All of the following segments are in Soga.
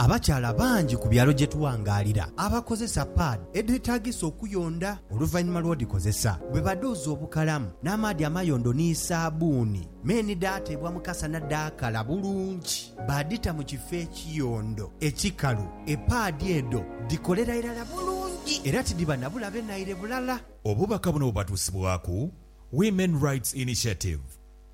Abakyala bangi ku byalo gye tuwangaalira abakozesa paadi edheetaagisa okuyonda oluvannyuma lw'odhikozesa. Bwe badhuuza obukalamu n'amaadhi amayondo ni saabbuuni, me ni dhaateebwa mu kasana dhaakala bulungi, baadhita mu kifo ekiyondo ekikalu, epaadi edho dhikolera irala bulungi era tidhiba na bulabe naire bulala. Obubaka buno bubatuusibwaku Women Rights Initiative.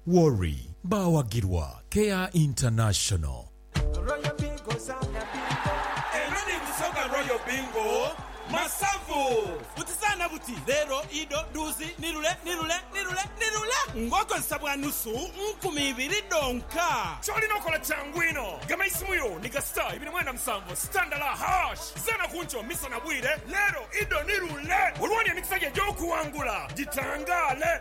Worry. Baawagirwa Care International. Royal Bingo zaana bingo. Eno ni Busoga Royal Bingo Masavu. Buti zaana buti, leero, ido, duuzi, ni lule, ni lule, ni lule, ni lule ng'okozesa bwa nusu nkumi ibiri dhonka. Ky'olina okola kyangu inho. Gema eisimu yo ni ga star ibiri mwenda musanvu star ndala hash. Zaana ku nkyo, misana, bwire, leero, ido, ni lule olwooni emikisa gyo egy'okuwangula gitangaale.